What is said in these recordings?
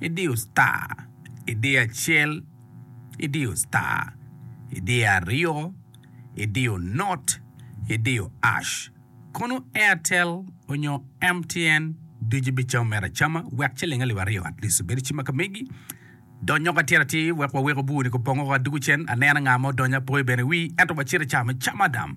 Idiyo star, idiyo acel, idiyo star, idiyo aryo, idiyo not, idiyo ash. Kono Airtel onyo MTN ducu ibicamo mere acama wek ciling alip aryo at least obed ci ma ka megi dony oko atir atir wek wawek obur ni kong opong oko adugu cen aneno nga ma odonyo apoyo bene wi ento wacit icamo acama dam.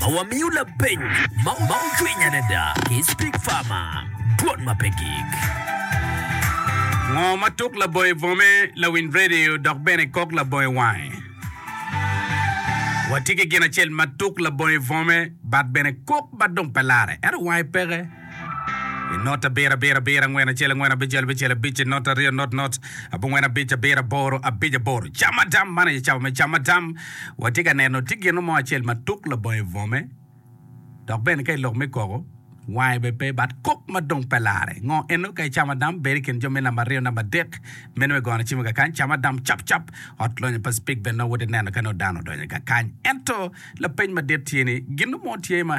ma wamiyo lapeny ma ocwiny adada ki Speak Farmer, dwol ma pe gik. Ngo ma tuk labongo i bwome, lawiny radio dok bene kok labongo i wange. Watye ki gin acel ma tuk labongo i bwome but bene kok but dong pe lare ento wange peke. I not abiro abiro abiro angwen acel angwen abicel abicel abic i not aryo not not abongwen abic abiro aboro abic aboro camadam man aye cawa me camadam watye ka neno tye gino mo acel ma tuk labongo i bwome dok bene ka i lok me koko wange bene pe bat kok ma dong pe lare ngo eno ka i camadam bedo i kin jo me namba aryo namba adek meno me gono cimo kakany camadam cap cap ot lonyo pa cipik bene nongo woti neno ka nongo dano odonyo kakany ento lapeny madit tye ni gino mo tye ma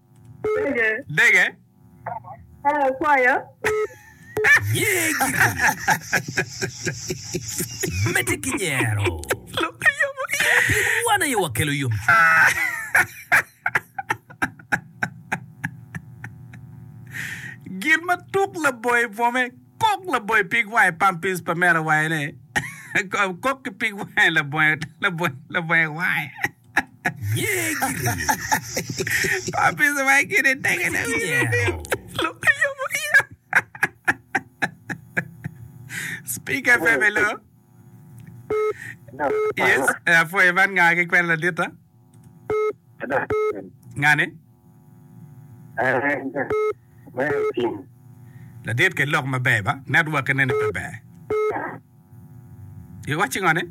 Dege. Hello, kwaya. Mete ki nyero. Pien wan aye wakelo yomcwiny. Gin ma tuk laboye bwome, kok laboye pig wange pampis pa mera wange ne, kok ki pig wange labonge wange. Apica ma kine tenge ne lok ayomo iya. Speaker Pepe Lo. Yes, apwoyo man nga ki kwena laditta. Ngani? Ladit kel lok maber ba. Network nen aye pe ber. Iwacci ngo ni?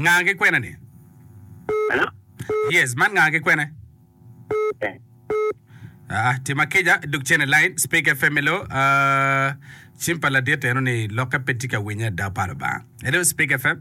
Nga ki kwena ni? Yes, man nga ki kwena? Aa, tim akica duk cen i line. Speaker FM elo, ah, cim pa ladit eno ni lokke pe tye ka winye ada pa Lubanga. Elo Speaker FM.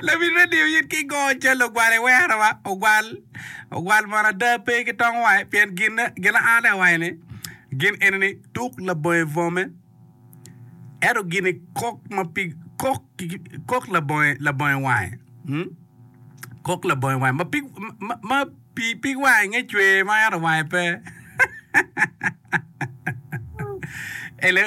Labil me diyo yit ki go cal ogwal i werowa. Ogwal, ogwal mono ada pe ki tong wa, pien gin gin a ane awaci ni gin eni ni tuk labonge bwome, ento gin ni kok ma pi kok kok labonge labonge wange, mm, kok labonge wange ma pig ma, ma pi pig wange nge cwer ma ento wange pe. Hello.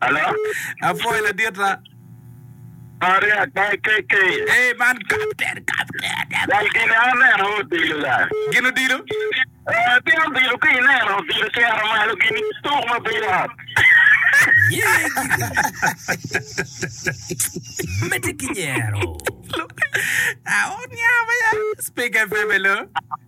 Hello? Apwoyo ladita. Pare ata KK. Ee, man kapten, kapten. Wal gin aneno odilo la. Gin odilo? Eh, pien odilo ka ineno odilo cero malo gin tuk ma bedo ot. Mete ki nyero. Aot nyama ya. Speak FM, hello?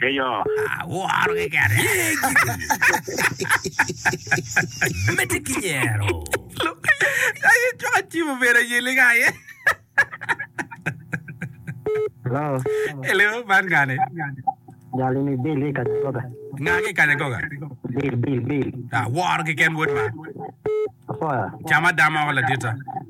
Ki yo. Aworo keken. Ye gikeni. Medde ki nyero. Aye cok acibo bedo aye liga aye. Hello. Hello, man gane. Jali ni Bill i Kanyagoga. Nga ki Kanyagoga? Bill, Bill, Bill. Aworo keken wod ma. Apoya. Cama dama woko ladita.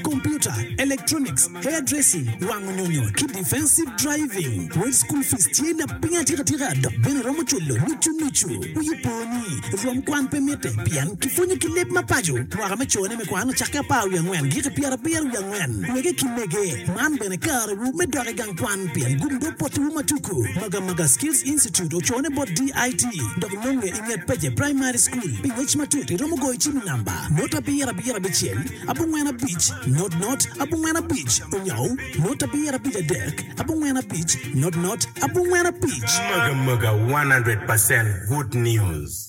Computer, electronics, hair dressing, wango nyonyo ki defensive driving. Wed school fees tye lapiny atika tika dok bene iromo cwalo nucu nucu. Wiyi po ni rwom kwan pe mitte pien kipwonyo ki leb ma paco. Mwaka me cone me kwan ocakke apar wiye angwen giki pyera abiro wiye angwen. Wege ki mege, man bene kare wu me dok igang kwan pien gumdo poti wu ma tuku. Maga maga Skills Institute ocone bot DIT dok nonge inget Peje Primary School. Pi ngec matut iromo goyo cim i namba note abiro abiro abicel. abongwen abic, not not, abongwen abic, onyau, not abiyera abic adek, abongwen abic, not not, abongwen abic. Mega mega 100 percent good news.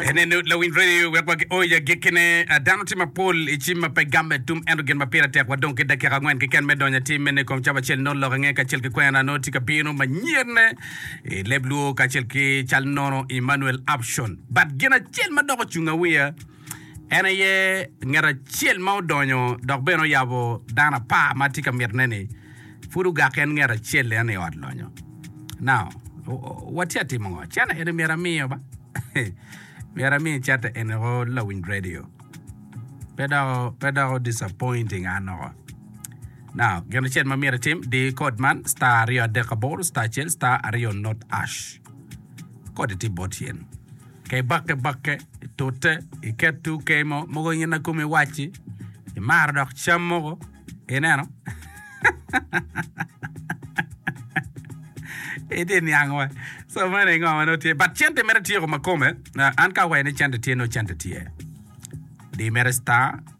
Ene nut lawiny radio wek wagi oyo agikkine. Ah, Dano tye mapol i cim ma pe gamme tum, ento gin ma pire tek wadong ki dakika angwen keken me donyo atim mene i kom cab acel nongo lok ange kacel ki kwena nongo tye ka bino manyen. i leb Luo kacel ki cal nono Emmanuel Upshaw. But gin acel ma dok ocunga wiya en aye ngat acel ma odonyo dok bene oyabo dano apar ma atye ka mitone ni pud ogak en ngat acel en i ot lonyo. Now, watye atimo ngo? Channel eni myero amiyo ba. myero amiyo channel eni o lawiny radio. Pe doko, pe doko disappointing an oko. Now, gin acel ma myero itim, di kod man, star aryo adek aboro, star acel, star aryo not ash. Kodi tye bot yen. Ka ibakke bakke, itute, iket two kay mo, mogo gin na kome iwacci, imaro dok cam mogo, ineno? Itye niang wa. So mene ngo ma nongo tye. But cente mere tyeko ma kome, ah, an ka awacci ni cente tye, nongo cente tye. Di mere star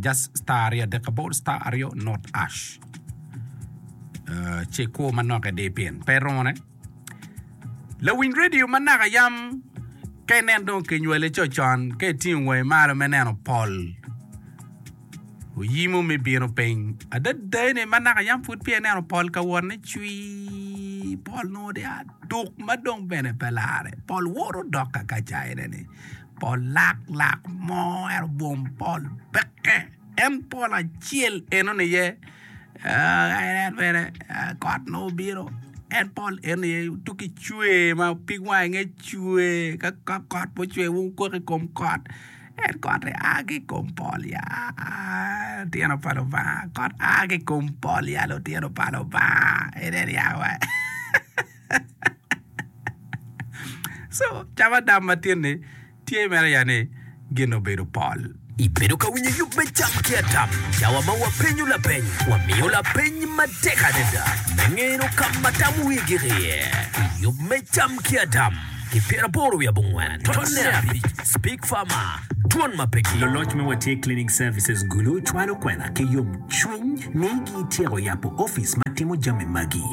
Just star aryo adek aboro star aryo not ash ce ikwo manok i di pin pe romo ne lawiny radio ma naka yam ka inen dong kinywale co con ka itingo wangi malo me neno pol oyimo me bino piny adada ni ma naka yam pud pye neno pol ka wot ni cwi pol nongo dia duk ma dong bene pe lare pol woro dok ka ka caine ni Pol lak lak mo ento bwom pol peke en pol acel enoni aye en bene kot nongo bino en pol enoni aye tuk ki cwer ma opig wange inge cwer ka kot pe ocwer wa okok i kom kot en kot aye a ki i kom pol ya litino pa Lubanga kot a ki i kom pol ya litino pa Lubanga ineno yaka wa. Co cam adam matin ni tye mere ya ni gin obedo pol. Ibedo ka winyo yub me cam ki adam? Cawa ma wapenyo lapeny, wamiyo lapeny matek adada me ngeno ka ma tam wi gik iye pi yub me cam ki adam ki pyeraboro wi abongwen tonne abic. Speak Pharma, Dwon ma pe gin. Luloc me Watye Cleaning Services Gulu cwalo kwena ki yomcwiny ni gityeko yabo office ma timo jami magi.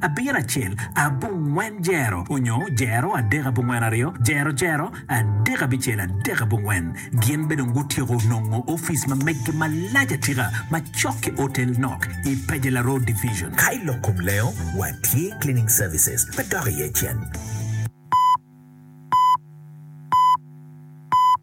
abiro acel abongwen jero onyo jero adek abongwen aryo jero jero adek abicel adek abongwen. Gin be dong gutyeko nongo office ma meggi malac atika macok ki Otel Nok i Pejela Road Division. Ka i lok kom lengo, watye cleaning services me dok iye cen.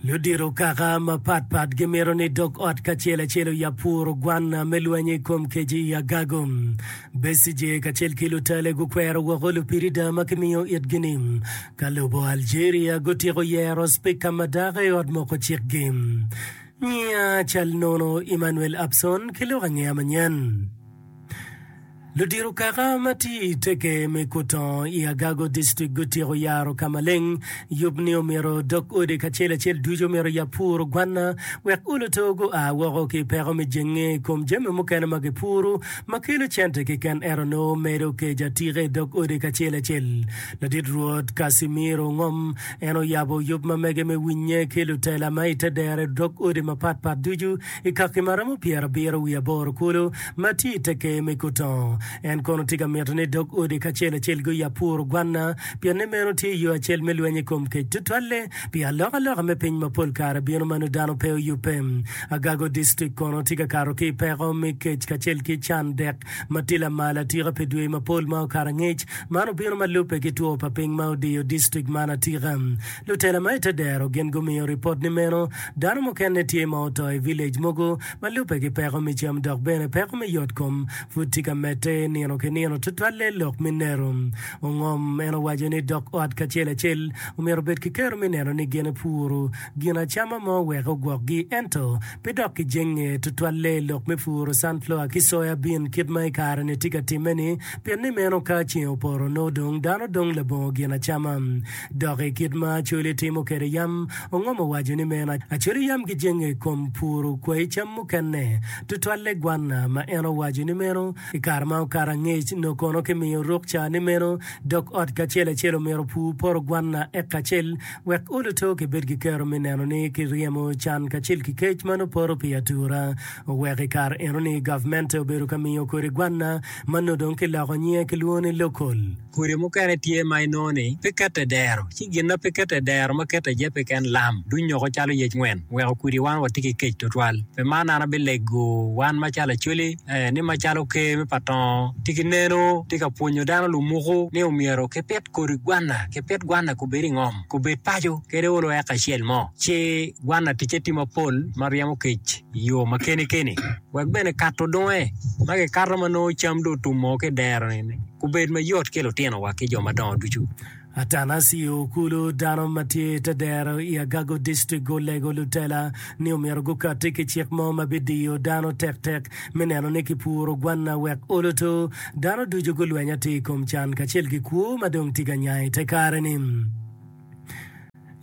Ludito kaka mapat pat gimito ni dog ot kacel acel oyab puru gwanna me lweny i kom keci i agago. Besigye kacel ki lutale gukwero woko lupirida ma kimiyo itgi-ni. Ka lobo Algeria gutyeko yero Spika ma dako i Ot Moko Cikgi, nyiya cal nono Emmanuel Abson ki lok angeya manyen. Ludito kaka ma tye i teke me Kutongo i Agago District gutyeko yaro ka maleng yub ni omyero dog odi kacel acel ducu omyero yab puro gwanna wek uluto gua woko ki peko me jenge i kom jami mukene ma gipuro ma kelo cente kiken ento nongo medo kec atika i dog odi kacel acel. Ladit Rwot Casimiro Ngom en oyabo yub ma mege me winye ki lutela ma ite dere dog odi mapat pat ducu I kaki ma romo pyerabiro wiye aboro kulu ma tye i te ker me Kutongo, en kono tye ka mito ni dog odi kacel acel guyab puro gwanna, pienni meno tye yo acel me lweny i kom kec tutwalle pi alokaloka me piny ma pol kare bino ma nongo dano pe oyubbe. Agago District kono tye ka kato ki i peko me kec kacel ki can dek ma tye lamal atika pi dwe mapol ma okato angec. Man obino ma lubbe ki two pa piny ma odiyo district man atika. Lutela ma i te dero gin gumiyo ripot ni meno Dano mukene tye ma oto i vilej mogo ma lubbe ki peko me cam dok bene peko me yotkom pud tye ka medde nino ki nino, tutwalle lok minero. Ongom en owaco ni dok ot kacel acel omyero obed ki kero me neno ni gin epuro gin acama mo wek ogwokgi ento pe dok ki jenge tutwalle lok me puro sunflower ki soya bean kit ma i kare-ni tye ka timme-ni pien ni meno ka ceng opoto nongo dong dano dong labongo gin acama Dok i kit ma Acholi timo kwede yam, Ongom owaco ni meno Acholi yam gijenge i kom puru kwayi cam mukene, tutwalle gwanna, ma en owaco ni meno i kare ma okato angec nyo kono kimiyo rukca ni meno dog ot kacel acel omyero opur poto gwanna eka acel wek oluto kibed ki kero me neno ni kiryemo can kacel ki kec ma nongo poto pi atura. Oweko i kare enoni gavmente obedo ka miyo kodi gwanna ma nongo dong kiloko nyinge kilwongo ni local. Kodi mukene tye ma inongo ni pe kete dero, ci gin ma pe kete dero ma kete aye peken lam, dunyoko calo yec ngwen, weko kudi wan watye ki kec twatwal. Pi man an abilego wan macalo Acholi, ee, ni macalo Ker me pa Tongo tye ki neno, tye ka pwonyo dano lumuku ni omyero kipit kodi gwanna, kipit gwanna kubed i ngom, kubed paco, kede olo eka acel mo. Ci gwanna ticce tye mapol ma ryemo kec i yo ma keni keni, wek bene kato dunge ma kikato ma nongo cam dong otum oo ki i dero-ni. Kubed mayot ki lutinowa ki jo madongo ducu. Atanasio Okulu, dano ma tye i te dero i Agago District gulego lutela ni omyero gukatti ki cik mo ma bidiyo dano tektek me neno ni kipuro gwanna wek oluto dano ducu gulweny atir i kom can kacel ki kwo ma dong tye ka nya i te kare-ni.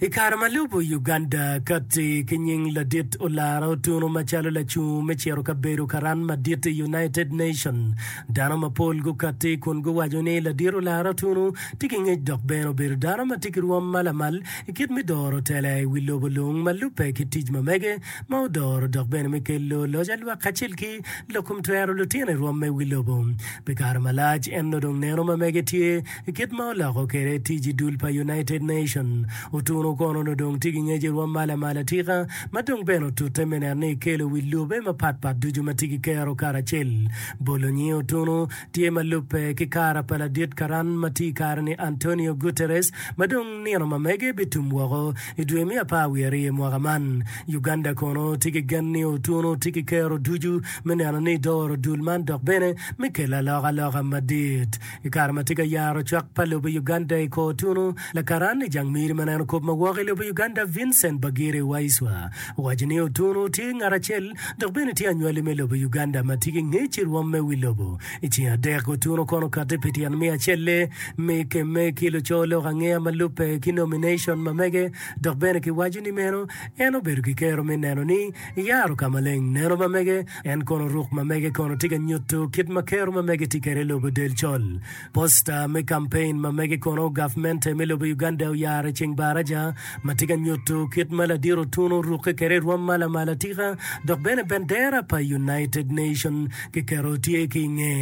I kare ma lubo, Uganda kati ki nying ladit olara otunu macalo lacungo me ciro kabedo karan madit i United Nations. Dano mapol gukati kun guwaco ni ladit olara otunu tye ki ngec dok bene obedo dano ma tye ki rwom ma lamal i kit me doro tela i wi lobo lung ma lubbe ki tic ma mege ma odoro dok bene me kelo loc a lwak kacel ki lok kom twero lutino i rwom me wi lobo. Pi kare malac en nodong neno ma mege tye I kit ma oloko kwede tic i dul pa United Nation, otuno kono nongo dong tye ki ngec i rwom mala mala tika ma dong bene otute me neno ni ekelo wi lube mapat pat ducu ma tye ki kero karacel. Bolo nyinge otuno tye ma lubbe ki kara pa ladit karan ma tye i kare ni Antonio Guterres ma dong nino ma mege bitum woko i dwe me apar wiye aryo mwaka man. Uganda kono tye ki gen ni otuno tye ki kero ducu me neno ni doro dul man dok bene me kelo alokaloka madit I kare ma tye ka yaro cwak pa lobo i Uganda i kor tunu, lakaran i jang miri ma neno kop ma woko i lobo Uganda Vincent Bagire Waiswa owaco ni Otunu tye ngat acel dok bene tye anywali me lobo Uganda ma tye ki ngec i rwom me wi lobo. I ceng adek Otunu kono okati pi tyen me acelle me kemme ki luco lok angeya ma lubbe ki nomination ma mege dok bene ki waco ni meno en obedo ki kero me neno ni eyaro ka maleng neno ma mege En kono ruk ma mege kono tye ka nyutu kit ma kero ma mege tye kede lobo del col. Posta me campaign ma mege kono gavmente me lobo Uganda oyaro i ceng baraja ma tye ka nyutu kit ma ladiro otuno oruke kede irwom ma lamal atika dok bene bendera pa United Nation ki keto tye ki inge.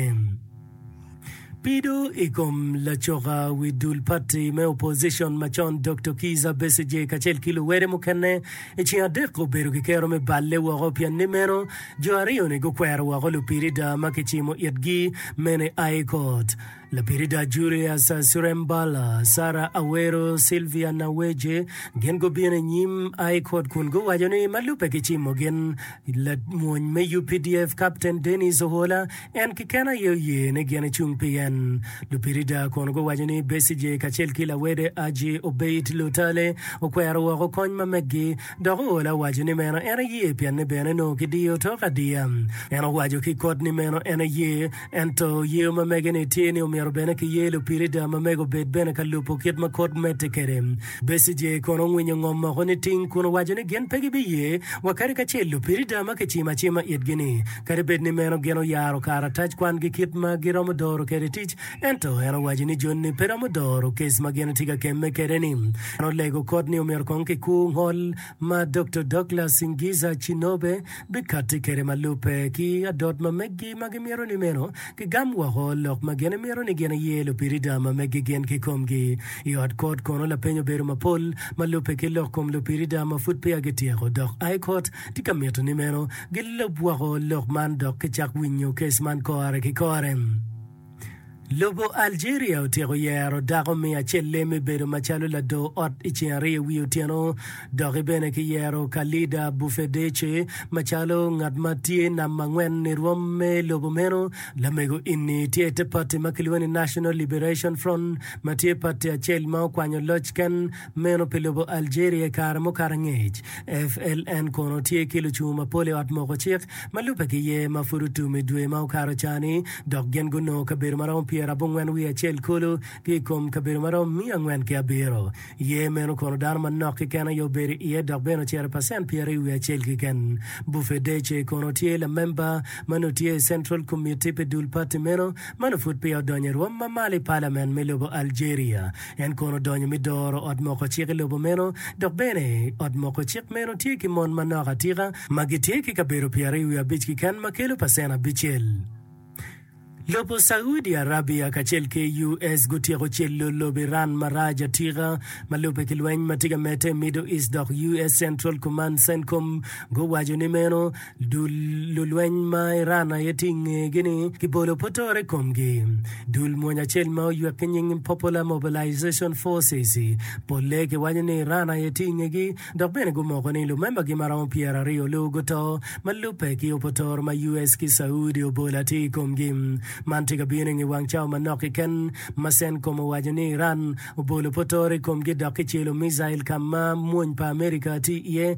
Pido i kom lacoka wi dul pati me opozicon macon Doktor Kizza Besigye kacel ki luwede mukene i ceng adek obedo ki kero me balle woko pien ni meno jo aryo-ni gukwero woko lupirida ma kicimo itgi mene i High Court. Lapirida Julius Surembala, Sarah Awero, Sylvia Naweje gin gubino i nyim High Court kun guwaco ni ma lubbe kicimo gin I lamony me updf Kapten Denis Ohola en keken aye oye ni gin ecung pi en. Lupirida kono guwaco ni Besigye kacel ki lawede Haji Obeid Lutale okwero woko kony ma meggi dok Ohola owaco ni meno en eye pienne bene nongo kidiyo tok adiya. En owaco ki kot ni meno en eye Ento yer ma mege-ni tye ni omyero bene kiyer lupirida ma mege obed bene ka lubo kit ma kod medde kwede. Becijeh kono ongwinyo ngom moko niting kun owaco ni gin pe gibiye wa kadi kacel lupirida ma kicimo acima itgi-ni. Kadi bed ni meno gin oyaro karatac kwangi kit ma giromo doro kwede tic, ento en owaco ni joni pe romo doro kec ma gin tye ka kemme kwede-ni. En olego kod ni omyero kong kikur ngol ma Doktor Douglas Ngiza Chinobe bikatti kwede ma lubbe ki adot ma meggi ma gimito ni meno gigam woko lok ma gin imito ni gin iye lupirida ma meggi gin kikomgi. I ot kot kono lapeny obedo mapol ma lubbe ki lok kom lupirida ma pud peya gityeko dok I kot tye ka mito ni meno gilub woko lok man dok gicak winyo kes man kore ki kore. Lobo Algeria otyeko yero dako me acel-le me bedo macalo lador ot i ceng aryo wi otyeno. Doki bene ki yero Khalida Boufedece macalo ngat ma tye namba angwen i rwom me lobo meno. Lamego inni tye i te pati ma kilwongo ni National Liberation Front ma tye pati acel ma okwanyo loc ken meno pi lobo Algeria i kare mukato angec. FLN kono tye ki lucungu mapol i ot moko cik. ma lubbe ki yer ma pud otum i dwe ma okato ca-ni, dok gin gunongo kabedo ma romo pyera abongwen wiye acel kulu ki i kom kabedo ma romo miya angwen ki abiro. Yer meno kono dano manok keken aye obedo iye dok bene ocito i pacent pyeraryo wiye acel keken. Bufedece kono tye lamemba ma nongo tye i Central Committee pi dul pati meno ma nongo pud peya odonyo i rwom ma malo i palament me lobo Algeria. En kono odonyo me doro ot moko cik i lobo meno, dok bene ot moko cik meno tye ki mon manok atika ma gitye ki kabedo pyeraryo wiye abic keken ma kelo pacen abicel. Lobo Saudi Arabia kacel ki US gutyeko celo lobo Iran marac atika ma lubbe ki lweny ma tye ka medde i Middle East dok US Central Command, Centcom, guwaco ni meno Dul lulweny ma Iran aye tye i ngegi-ni kibolo potore i komgi. Dul mony acel ma oywek ki nying Popular Mobilization Forces polle kiwaco ni Iran aye tye i ngegi dok bene gumoko ni lumembagi ma romo pyeraryo lu guto ma lubbe ki opotore ma US ki Saudi obolo atir i komgi. Man tye ka bino i nge wang cawa manok keken ma CENTCOM owaco ni Iran obolo potore i komgi dok kicelo micail ka ma mony pa Amerika tye iye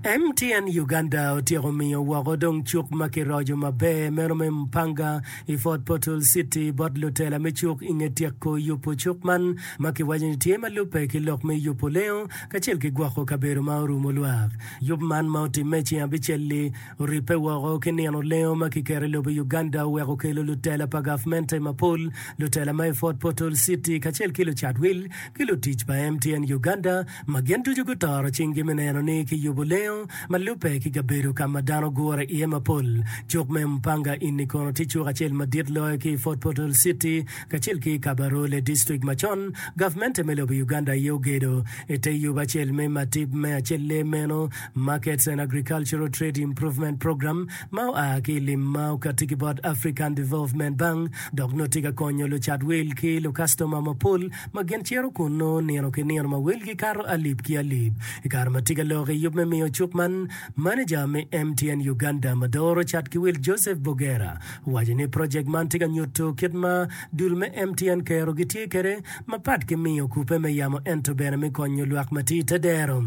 MTN Uganda otyeko miyo woko dong cuk ma kiroco maber meno me Mpanga i Fort Portal City bot lutela me cuk i nge tyeko yubo cuk man ma kiwaco ni tye ma lubbe ki lok me yubo lengo kacel ki gwoko kabedo ma orumo lwak. Yub man ma otimme i ceng abicel-li oribbe woko ki nino lengo ma kiketo i lobo Uganda oweko okelo lutela pa gavmente mapol, lutela ma i Fort Portal City kacel ki lucat wil ki lutic pa MTN Uganda. ma gin ducu gutoro cinggi me neno ni kiyubo lengo ma lubbe ki kabedo ka ma dano gure iye mapol. Cuk me Mpanga inni kono tye cuk acel madit loyo ki i Fort Portal Citi kacel ki i Kabarole District ma con gavmente me lobo Uganda aye ogedo. I te yub acel me matip me acelle meno, Markets and Agricultural Trade Improvement Program, ma oa ki i lim ma okatti ki bot African Development Bank dok nongo tye ka konyo lucat wil ki lukastoma mapol ma gin cito kunnu nino ki nino ma welgi kato alip ki alip. I kare ma tye ka lok i yub me miyo cuk man, maneja me MTN Uganda ma doro cat ki wil Joseph Bogera owaco ni project man tye ka nyutu kit ma dul me MTN kero gitye kwede mapat ki miyo kupe me yamo ento bene me konyo lwak ma tye i te dero.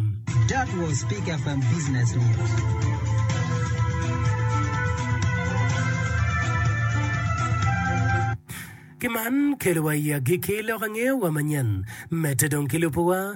That was Pick FM Business News. Ki man, kelo wa i agikki lok angeyo wa manyen. Medde dong ki lubo wa.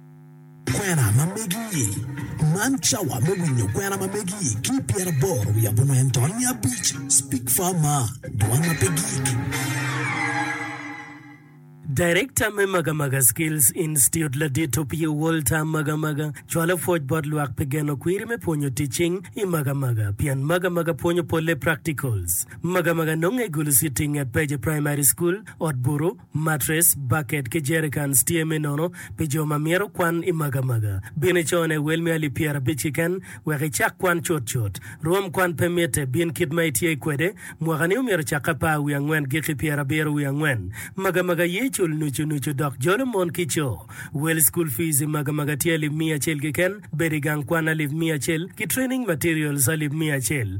Kwena ma megi-i. Man cawa me winyo kwena ma megi-i ki i pyeraboro wiye abongwen to niya abic. Speak far maa, dwan ma pe gik. Director me Magamaga Skills Institute Ladito Pio Walter Magamaga cwalo pwoc bot lwak pi geno kwiri me pwonyo ticing i Magamaga pien Magamaga pwonyo polle practicals. Magamaga nonge i Gulu City nget Peje Primary School, Ot Buru, Matres, baket ki jerikans tye me nono pi jo ma myero kwan i magamaga. Bin i cone wel me alip pyerabic keken wek icak kwan cutcut. Rwom kwan pe mitte, bin kit ma itye kwede. Mwakani omyero cakke apar wiye angwen giki pyerabiro wiye angwen. Magamaga ye cul nucu nucu dok jolo mon ki co. Wel school fees i magamaga tye alip miya acel keken, bedo i gang kwan alip miya acel, ki training materials alip miya acel.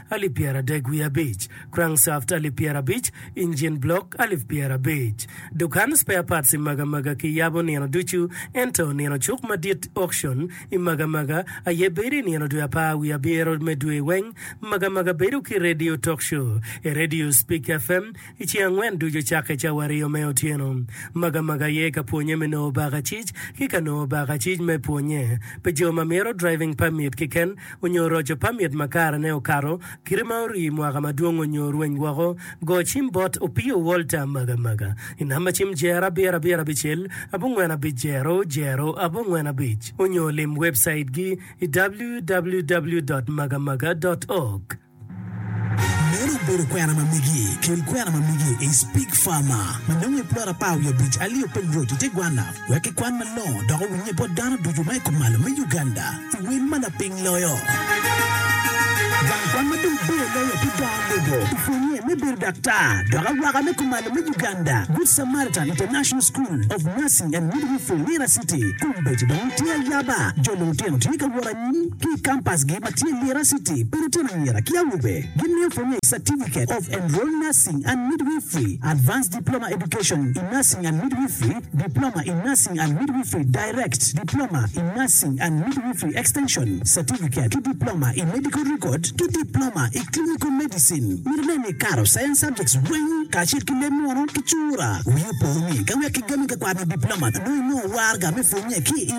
alip pyeradek wiye abic, crankshaft alip pyerabic, engine block alip pyerabic. Dukan spare parts i Magamaga kiyabo nino ducu, ento nino cuk madit, auction, i Magamaga aye bedo i nino dwe apar wiye abiro me dwe weng. Magamaga bedo ki radio talk show i radio Speak FM, I ceng angwen ducu cakke cawa aryo me otyeno, Magamaga aye ka pwonye me nongo bakacic ki ka nongo bakacic me pwonye pi jo ma mito driving permit kiken onyo roco permit ma karene okato kite ma orii mwaka madwong onyo orweny woko, go cim bot Opio Walter Magamaga i namba cim jer abiro abiro abicel abongwen abic jero jero abongwen abic onyo lim webcait gi i www dot magamaga dot org. Meno obedo kwena ma megi. Kel kwena ma megi i Spig Farmer ma nongo i plot apar wiye abic Alio Peng Road i te gwana wek kikwan malongo dok owinye bot dano ducu ma i kumalo me Uganda i wel ma lapiny loyo. Gang kwan ma dong bor loyo ki dongo lobo opwonye me bedo daktar dok awaka me kumalo me Uganda Good Samaritan International School of Nursing and Midwifery Lira City, Kombeddi dong tye ayaba jo lulutino tye ka wot Mon ki i kampasgi ma tye i Lira City pa lutino anyira ki awobe gimiyo pwonye i Certificate of Enrolled Nursing and Midwifery, Advanced Diploma Education in Nursing and Midwifery, Diploma in Nursing and Midwifery Direct, Diploma in Nursing and Midwifery Extension Certificate ki Diploma i Medical Record ki Diploma i Clinical Medicine. Mito nen ni ikato Science Subjects weng kacel ki leb munu ki cura. Wii opo ni ka wek igami ka kwano Diploma nongo inongo waraga me pwonye ki i.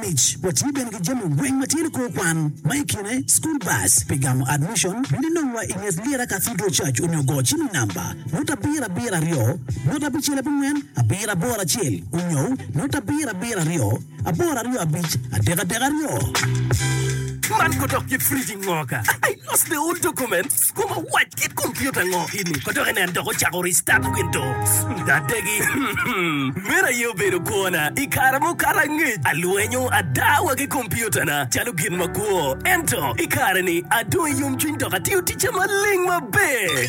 mic, watye bene ki jami weng ma tye nikor kwan, ma i kine school bus pi gamo admission, bino inongwa i nget Lyera Cathedral Church onyo go cim i namba, not abiro abiro aryo, not abicel abongwen, abiro aboro acel onyo not abiro abiro aryo, aboro aryo abic, adek adek aryo. Man kodok kit fridge ngo ka I lost the old documents. Kom owac kit kompiuta ngo ini ma dok enen dok ocako restart Windows adegi. Meno aye obedo kwona i kare mukato angec. Alwenyo ada wa ki kompiutana calo gin makwo. Ento i kare-ni adong i yomcwiny dok atiyo ticca maleng maber.